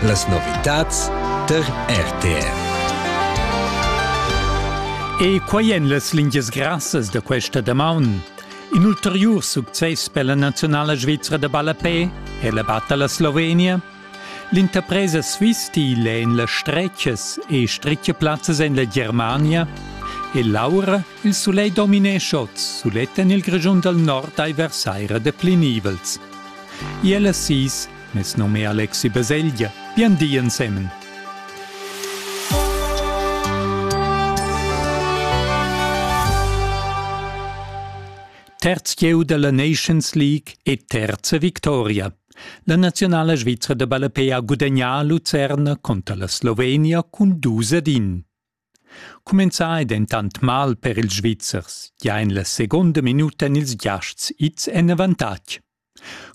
Las novitads tar RTR. E quai èn las lingias grassas da questa damaun. In ulteriur success per la nazionala svizra da ballapè è la batta la Slovenia. L'interpresa Swistil è en las stretchas e stretge plazzas en la Germania e l'aura Il sulegl dominescha oz sulet en il Grischun dal nord ai versaira de plinivels. Iel assis, mes nome Alexi Beseglia, bien di ensemen. Terzieu della Nations League e terza victoria. La nazionala svizra de balapé ha gudagnà a Lucerna contra la Slovenia cun dus ad in. Cumenzà ei dentant mal per ils Svizzers, gia en la seconda minuta en ils giasts ids en avantatg.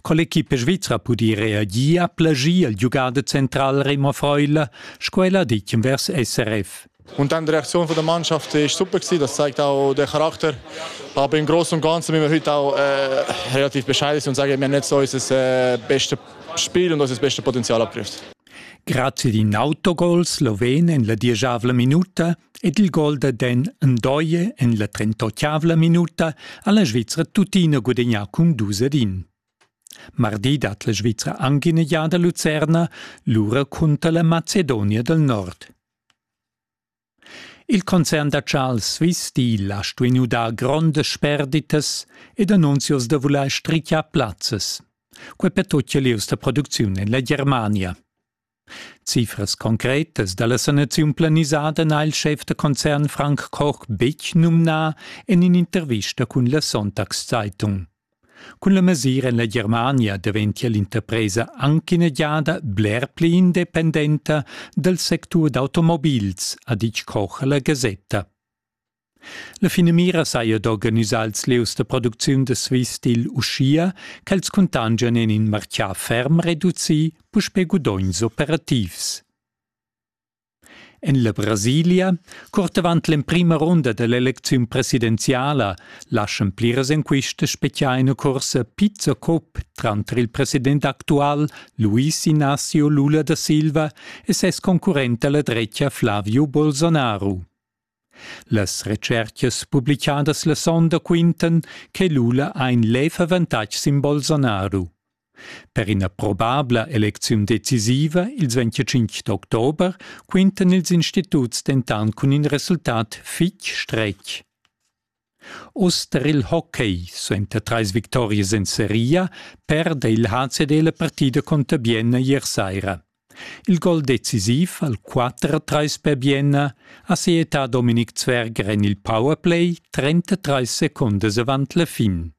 Con l'equipa svizra pudi reagir a plagir il giugader central Remo Freuler, sco el ha ditg vers SRF. Und dann die Reaktion von der Mannschaft war super Das zeigt auch den Charakter. Aber im Großen und Ganzen müssen wir heute auch äh, relativ bescheiden sein und sagen, wir haben nicht so unser äh, bestes Spiel und unser bestes Potenzial abgegriffen. Grazia d'in autogol sloven en la dieschavla minuta ed il gol da Den Ndoye en la trentotgavla minuta ha la Svizra tuttina gudagnà cun dus ed in. Mardi dat la Svizra anc ina giada Lucerna, lura cunter la Macedonia dal Nord. Il concern da Charles Swiss Steel ha stuì dar grondas sperditas ed annunzios da vulair strichiar plazzas. Quai per tut lieus da producziun en la Germania. Cifras concretas da la sanaziun planisada n'ha il schef da concern Frank Koch betg numnà en in'intervista cun la Sonntagszeitung. Cun la mesira en la Germania daventia l'interpresa anc ina giada bler pli independenta dal sectur d'automobils, ha ditg Koch a la Gasetta. La finamira saja d'organisar ils lieus da producziun da Swiss Steel uschia ch'els cuntangian en in martgà ferm reducì puspè gudogns operativs. En la Brasilia, curt avant l'emprima runda da l'elecziun presidenziala, laschan pliras enquistas speziar ina cursa Pizza Cup tranter il president actual Luis Inácio Lula da Silva e ses concurrent alla drecia Flavio Bolsonaro. Las retscherchas publichadas la sonda quintan che Lula ha in lev avantatg sin Bolsonaro. Per ina probabla elecziun decisiva ils 25 d'october quintan ils instituts dentant cun in resultat fitg stretg. Uss tar il hockey suenter trais victorias en seria perda il HCD la partida conter Bienna ier saira. Il gol decisiv al 4-3 per Bienna ha sietà Dominik Zwerger en il powerplay 33 secondas avant la fin.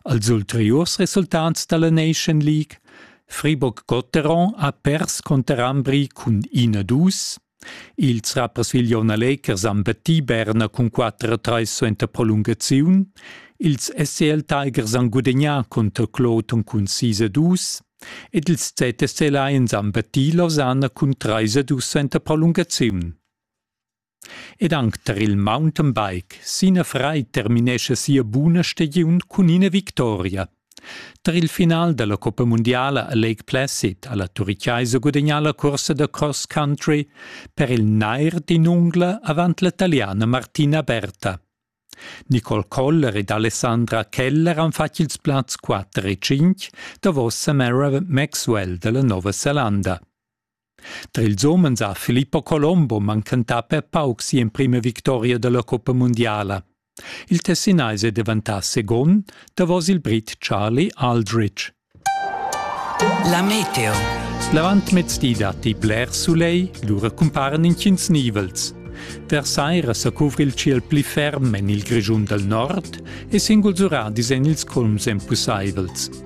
Als ulteriurs resultats dalla Nation League Friburg-Gotteron ha pers cunter Ambri cun ina dus. Ils rappersviglion Alekers han battì Berna cun 4 a 3 suenter prolungaziun. Ils SCL Tigers han gudagnà cunter Kloton cun 6 a 2 ed ils ZSC Lions han battì Lausanne cun 3 a 2 suenter prolungaziun. Ed anc tar il mountainbike. Sina Frei terminescha sia buna stagiun cun ina victoria. Tar il final da la Coppa mundiala a Lake Placid ha la Turichaisa gudagnà la cursa da cross country per il nair d'in ungla avant la taliana Martina Berta. Nicole Koller ed Alessandra Keller han fatg ils plazs 4 e 5 davos Samara Maxwell da la Nova Zelanda. Tra ils umens ha Filippo Colombo manchentà per pauc si'emprima victoria dalla coppa mundiala. Il Tessinais è deventà second davos il Brit Charlie Aldrich. La meteo. L'avantmezz di datti blers soleil, lura cumparan intgins nivels. Der saira sa cuvri il ciel pli ferm en il Grischun dal nord e singuls ura disegn ils colms empusaivels.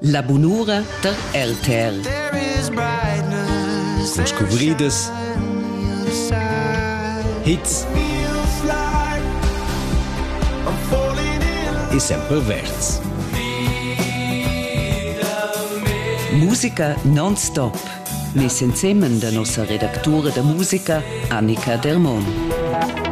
La bunura da RTL. Cun scuvridas, hits e sempre verds. Musica non-stop. Mes ensemen da nossa redactura da musica Annika Dermon.